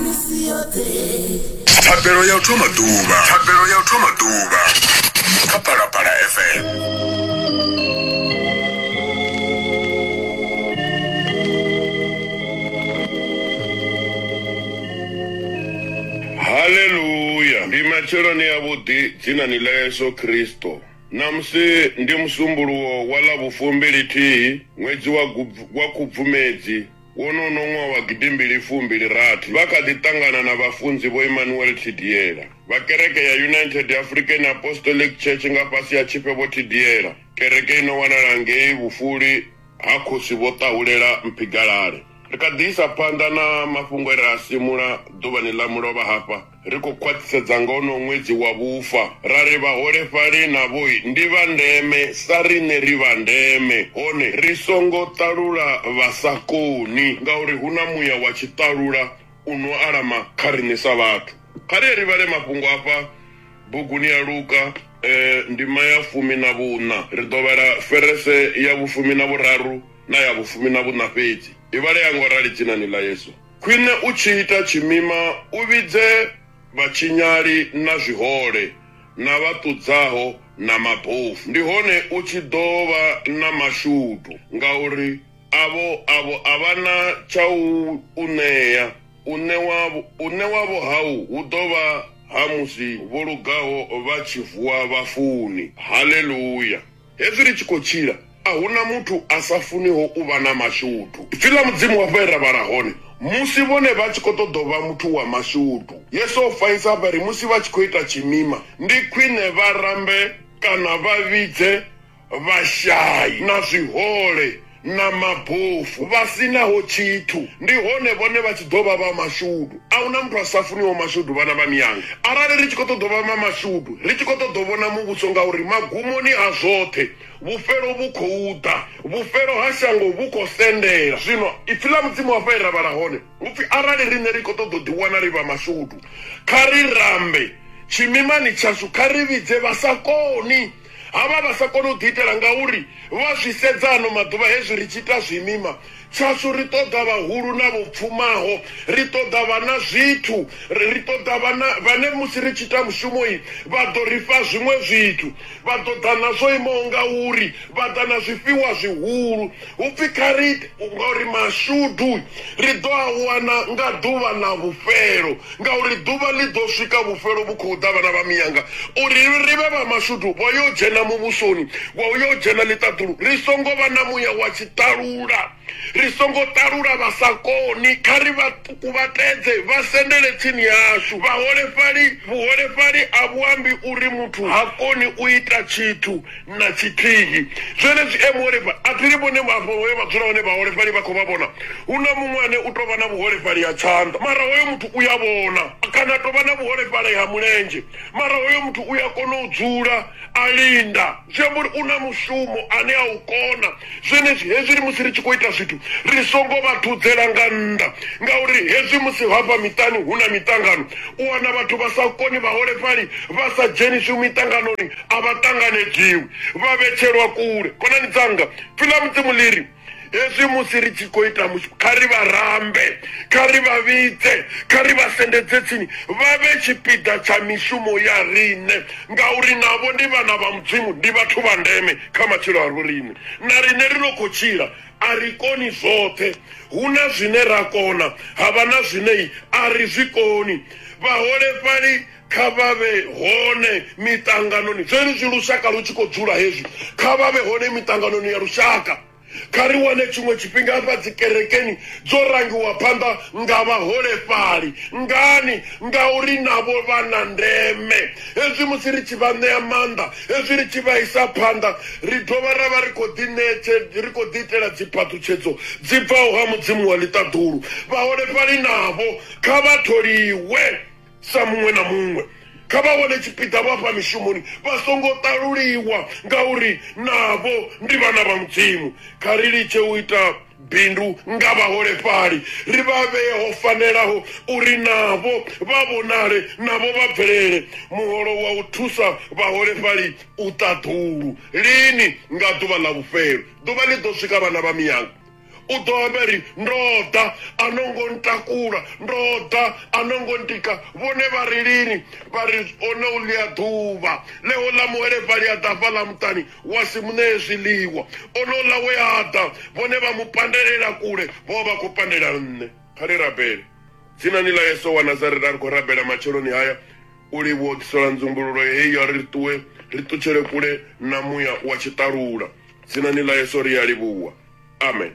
misi yoṱhe thabelo ya u thoma ḓuvha thabelo ya u thoma ḓuvha kha palapala fm haleluya ndi matsheloni avhuḓi dzinani ḽa yesu kristo namusi ndi musumbuluwo wa ḽa vhufumbili-thihi ṅwedzi wa Gubvu- wa khubvumedzi Wonono ṅwaha wa gidimbili fumbili rathi, vha kha ḓi ṱangana na vhafunzi Vho Emmanuel Thidiela vha kereke ya United African Apostolic Church nga fhasi ha Tshifhe Vho Thidiela, kereke i no wanala ngei vhufuli ha Khosi Vho Ṱahulela Mphigalale. Ri kha ḓi isa phanḓa na mafhungo e ra a simula ḓuvhani ḽa mulovha hafha. Ri khou khwaṱhisedza nga wonowo ṅwedzi wa vhufa ra ri vhaholefhali navho ndi vha ndeme sa riṋe ri vha ndeme, hone ri songo ṱalula vha sa koni ngauri hu na muya wa tshiṱalula u no alama kha riṋe sa vhathu. Kha ri ye ri vhale mafhungo a fha buguni ya Luka ndima ya fumi na vhuṋa. Ri ḓo vhala verese ya vhufumi na vhuraru na ya vhufumi na vhuṋa fhedzi. I vhalea nga u rali Dzinani ḽa Yesu. Khwine u tshi ita tshimima u vhidze vhatshinyali na zwihole na vha ṱudzaho na mabofu, ndi hone u tshi ḓo vha na mashudu, ngauri avho avho a vha na tsha u u ṋea, u ṋewa u ṋewavho hau hu ḓo vha ha musi vho lugaho vha tshi vuwa vhafuni. Haleluya! Hezwi ri tshi khou tshila, a hu na muthu a sa funiho u vha na mashudu. Ipfi ḽa Mudzimu hafha he ra vhala hone, Musi vhone vha tshi khou ṱoḓa u vha muthu wa mashudu. Yesu o fanyisa hafha a ri musi vha tshi khou ita tshimima, ndi khwine vha rambe kana vha vhidze vhashai na zwihole. na mabofu vha si naho tshithu ndi hone vhone vha tshi ḓo vha vha mashudu a hu na muthu a sa funiho mashudu vhana vha miyanga arali ri tshi khou ṱoḓa vha ma mashudu ri tshi khou ṱoḓa vhona muvhuso ngauri magumoni a zwoṱhe vhufhelo vhu khou ḓa vhufhelo ha shango vhu khou sendela zwino ipfi ḽa mudzimu hafha e ra vhala hone upfi arali riṋe ri khou ṱoḓa u ḓiwana ri vha mashudu kha ri rambe tshimimani tshashu kha ri vhidze vha sa koni Ha vha vha sa koni u ḓiitela ngauri vha zwi sedza ano maḓuvha hezwi ri tshi ita zwimima tshashu ri ṱoḓa vhahulu na vho pfumaho ri ṱoḓa vha na zwithu ri ṱoḓa vhana vhane musi ri tshi ita mushumo yi vha ḓo ri fha zwiṅwe zwithu vha ḓo ḓa na zwo imaho ngauri vha ḓa na zwifhiwa zwihulu Hu pfi kha ri ite ngauri mashudu ri ḓo a wana nga ḓuvha ḽa vhufhelo, ngauri ḓuvha ḽi ḓo swika vhufhelo vhu khou ḓa vhana vha miyanga, uri ri vhe vha mashudu vha yo dzhena muvhusoni wa u yo dzhena ḽiṱaḓulu, ri songo vha na muya wa tshiṱalula, ri songo ṱalula vha sa koni, kha ri vha kuvhatedze vha sendele tsini hashu. Vhaholefhali Vhuholefhali a vhu ambi uri muthu ha koni u ita tshithu. na tshithihi zwenezwi e muholefhali a thi vhone afho hoyo vha dzula hone vhaholefhali vha khou vha vhona hu na muṅwe ane u tou vha na vhuholefhali ha tshanḓa mara hoyo muthu u ya vhona kana tou vha na vhuholefhali ha mulenzhe mara hoyo muthu u ya kona u dzula a linda zwi amba uri u na mushumo ane a u kona zwenezwi hezwi ri musi ri tshi khou ita zwithu ri songo vha thudzela nga nnḓa ngauri hezwi musi hafha miṱani hu na miṱangano u wana vhathu vha sa koni vhaholefhali vha sa dzheniswi miṱanganoni a vha ṱanganedziwi vha vhetshelwa kule khonani dzanga filamu dzimu ḽiri hezwi musi ri tshi khou ita mushumo kha ri vha rambe kha ri vha vhidze kha ri vha sendedze tsini vha vhe tshipiḓa tsha mishumo ya riṋe ngauri navho ndi vhana vha mudzimu ndi vhathu vha ndeme kha matshilo a ro riṋe na riṋe ri no khou tshila a ri koni zwoṱhe hu na zwine ra kona ha vha na zwine a ri zwi koni vhaholefhali Kha vha vhe hone miṱanganoni. Zwenezwi lushaka lu tshi khou dzula hezwi, kha vha vhe hone miṱanganoni ya lushaka. Kha ri wane tshiṅwe tshifhinga hafha dzikerekeni dzo rangiwa phanḓa nga vhaholefhali. Ngani? Ngauri navho vha na ndeme. Hezwi musi ri tshi vha ṋea maanḓa, hezwi ri tshi vha isa phanḓa, ri dovha ra vha ri khou ḓiṋetshe, ri khou ḓiitela dziphaṱhutshedzo dzi bvaho ha Mudzimu wa ḽiṱaḓulu. Vhaholefhali navho kha vha tholiwe. sa muṅwe na muṅwe kha vha wane tshipiḓa vho afha mishumoni vha songo ṱaluliwa ngauri navho ndi vhana vha mudzimu kha ri litshe u ita bindu nga vhaholefhali ri vha vhee ho fanelaho uri navho vha vhonale navho vha bvelele muholo wa u thusa vhaholefhali u ṱaḓulu lini nga ḓuvha ḽa vhufhelo ḓuvha ḽi ḓo swika vhana vha miyanga u ḓo amba ri ndo ḓa a no ngo ntakula ndo ḓa a no ngo ndika vhone vha ri lini vha ri ono u ḽia ḓuvha ḽeho ḽa muholefhali a ḓa fhaḽa muṱani wa si mu ṋee zwiḽiwa ono ḽa we a ḓa vhone vha mu pandelela kule vho vha vha khou pandela nṋe kha ri rabele dzinani ḽa yesu wa nazareta a ri khou rabela matsheloni haya u livhuwa u ḓisola nzumbululo heyi ya ri ṱuwe ri ṱutshele kule na muya wa tshiṱalula dzinani ḽa yesu ri a livhuwa amen